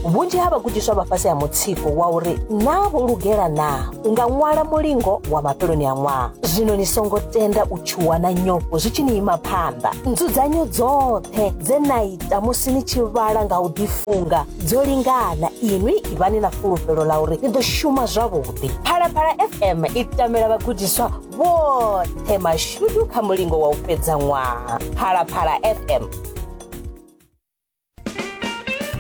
vhunzhi ha vhagudiswa vha fhasi ha mutsiko wa uri naa vho lugela naa u nga ṅwala mulingo wa mafheloni a ṅwaha zwino ni songo tenda u tshuwa na nyofho zwi tshi ni ima phanḓa nzudzanyo dzoṱhe dze na ita musi ni tshi vhala nga u ḓifunga dzo lingana inwi ivhani na fulufhelo ḽa uri ni ḓo shuma zwavhuḓi phalaphala fm i tamela vhagudiswa vhoṱhe mashudu kha mulingo wa u fhedza ṅwaha phalaphala fm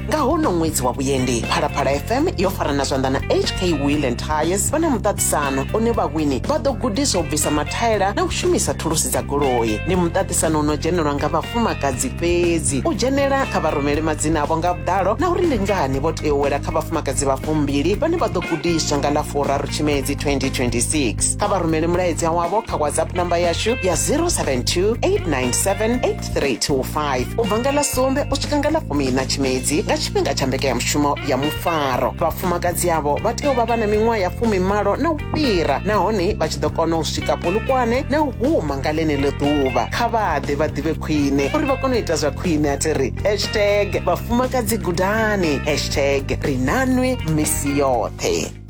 nga hono ṅwedzi wa vhuendi phalaphala fm yo farana zwanḓa na hk wheel and tires vha na muṱaṱisano une vhawini vha ḓo gudiswa u bvisa mathaela na u shumisa thulusi dza goloi ndi muṱaṱisano uno dzhenelwa nga vhafumakadzi fhedzi u dzhenela kha vha rumele madzina avho nga vhuḓalo na uri ndi ngani vho tea u wela kha vhafumakadzi vha fumbili vhane vha ḓo gudiswa nga ḽa furaru tshimedzi 2026 kha vha rumele mulaedza wavho kha whatsapp namba yashu ya 072 897 3 to 5 u bva nga ḽa sumbe u swika nga ḽa fumina tshimedzi nga tshifhinga tsha mbekanyamushumo ya mufaro vhafumakadzi avho vha tea u vha vha na miṅwaha ya fumimalo na u fhira nahone vha tshi ḓo kona u swika polukwane na u huma nga ḽeneḽo ḓuvha kha vhaḓe vha ḓivhe khwine uri vha kone u ita zwa khwine a thi ri hashtag vhafumakadzi gudani hashtag ri nanwe misi yoṱhe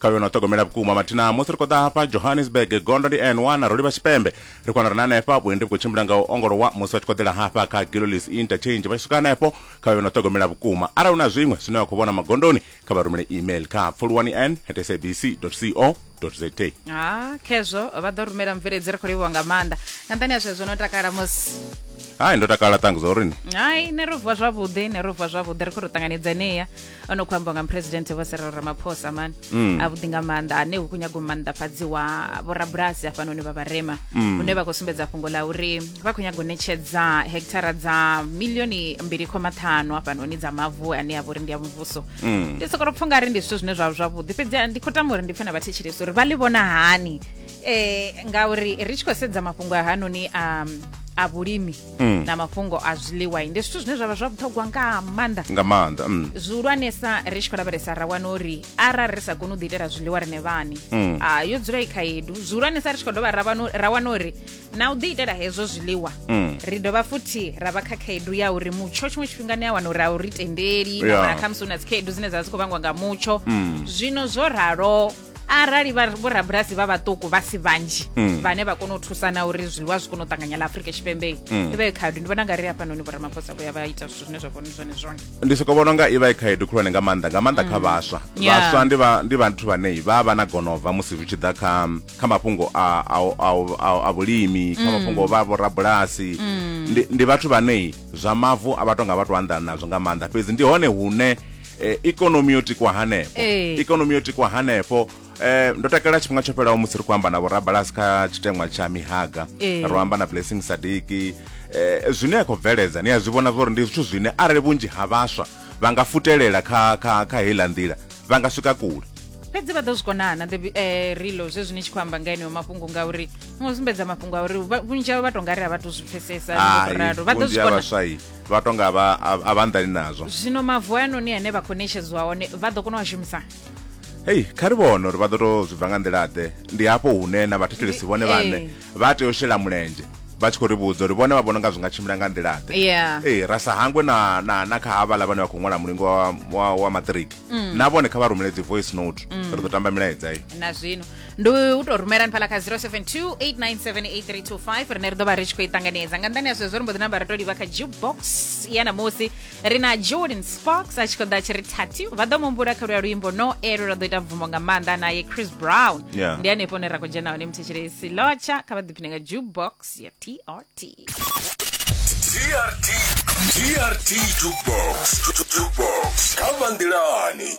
kha vhe no ṱhogomela vhukuma mathina musi ri khou ḓa hafha johannesburg gondo ndi n one ro livha tshipembe ri khou ri na hanefha vhuendi vhu khou tshimbila nga u ongolowa musi vha tshi khou ḓela hafha kha gilolis interchange vha tshi swika hanefho kha vhe vhe no ṱhogomela vhukuma arali hu na zwiṅwe zwine vha khou vhona magondoni kha vha rumele email kha pfuluwani n at sabc co za ha khezwo vha ḓo rumela mveledzi ri khou livhuwa nga maanḓa nga nṱani ha zwezwo no takala musi hai ndo takala ṱangu zwa urini hai ne ro vuwa zwavhuḓi ne ro vuwa zwavhuḓi ri khou ri ṱanganedzaneya o no khou ambiwa nga muphuresidennde vho serelo ramaphosa mani mm. avhuḓi nga maanḓa ane hu khou nyaga u maanḓafhadziwa vhorabulasi hafhanoni vha vharema mm. hune vha khou sumbedza fhungo la uri vha khou nyaga u ṋetshedza hekithara dza milioni mbili khoma ṱhanu hafhanoni dza mavu ane a vha uri ndi ya muvhuso mm. ndi sokolo pfha ungari ndi zwithu zwine zwa zwavhuḓi fhedzi ndi khou tama uri ndi pfhe na vhathetshelesi uri vha ḽi vhona hani um ngauri ri tshi khou sedza mafhungo a hanoni a vhulimi Mm. na mafhungo a zwiḽiwa ndi zwithu zwine zwavha zwa vhuṱhogwa nga maanḓa nga maanḓa mm. zwihulwanesa ri tshi khou lavhelesa ra wana uri arali ri sa koni u ḓiitela zwiḽiwa rine vhani mm. ah, yo dzula i khaedu zwihulwanesa ri tshi khou dovha ra wana uri na u ḓiitela hezwo zwiḽiwa mm. ri dovha futhi ra vha kha khaedu ya uri mutsho tshiṅwe tshifhinga ni a wana uri a u ri tendeli yeah. khamusi hu na dzikhaedu dzine dza vha dzi khou vhangwa nga mutsho mm. zwino zwo ralo arali vha- vhorabulasi vha vhaṱuku vha si vhanzhi Mm. vhane vha kona u thusana uri zwiḽiwa zwi kone u ṱanganya ḽa afurika tshipembe Mm. i vha i khaedu ndi vhona nga ri hafhanoni vhoramaphosa vho ya vha ita zwithu zwine zwa vhona zwone zwone ndi soko vhona unga i vha i khaedu khulwane nga maanḓa nga maanḓa kha vhaswa Mm. Yeah. vhaswa ndi vha- ndi vhathu vhane vha vha na gonova musi zwi tshi ḓa kha kha mafhungo a- a- a- a- a vhulimi kha Mm. mafhungo o vha vhorabulasi Mm. ndi ndi vhathu vhane zwa mavu a vha tonga vha to anḓana nazwo nga maanḓa fhedzi ndi hone hune eh, ikonomi yo tikwa hanefho Ee. ikonomi yo tikwa hanefho Eh, ndo takalela tshifhinga tsho fhelaho musi ri khou amba na vhorabalasi kha tshiteṅwa tsha mihaga Ee. ro amba na blessing sadiki eh, zwine ya khou bveledza ni a zwi vhona zwori ndi zwithu zwine arali vhunzhi ha vhaswa vha nga futelela kha, kha, kha heiḽa nḓila vha nga swika kule fhedzi vha ḓo zwi konana the eh, rilo zwezwi ni tshi khou amba nga eneo mafhungo ngauri ni ngo sumbedza mafhungo a uri vha- vhunzhi havho vha to nga ri a vha to zwi pfesesa Hai, ralo vha ḓo vhunzhi zwi ha kona vhaswa i vha to nga vha a- a vha nḓani nazwo zwino mavu a noni ane vha khou netshedziwa one vha ḓo kona u a shumisa hei kha ri vhone uri vha ḓo to zwi bva nga nḓila-ḓe ndi hafho hune na vhathetshelesi vhone Eh. vhaṋe vha tea u shela mulenzhe vha tshi khou ri vhudza uri vhone vha vhona nga zwi nga tshimbila nga nḓila-ḓe Yeah. ee ra sa hangwe na, na, na kha havhala vhane vha khou ṅwala mulingo wa, wa, wa maṱiriki Mm. na vhone kha vha rumele dzi voice note ri ḓo tamba milaedza iyo na zwino ndi u tou rumela hanefhala kha 072 8978325 rine ri ḓo vha ri tshi khou i ṱanganedza nga nḓani ya zwezwo ri mbo ḓi namba ri tou livha kha jukebox ya namusi ri na jordan sparks a tshi khou ḓa a tshi ri thati vha ḓo mumbula kha luya luimbo no elo ra ḓo ita bvumo nga maanḓa naye chris brown Yeah. ndi hanefho hune ra khou dzhena hone muthetshiresi lotsha kha vha ḓiphine nga jukebox ya trt TRT TRT Jukebox Jukebox Kama Ndilani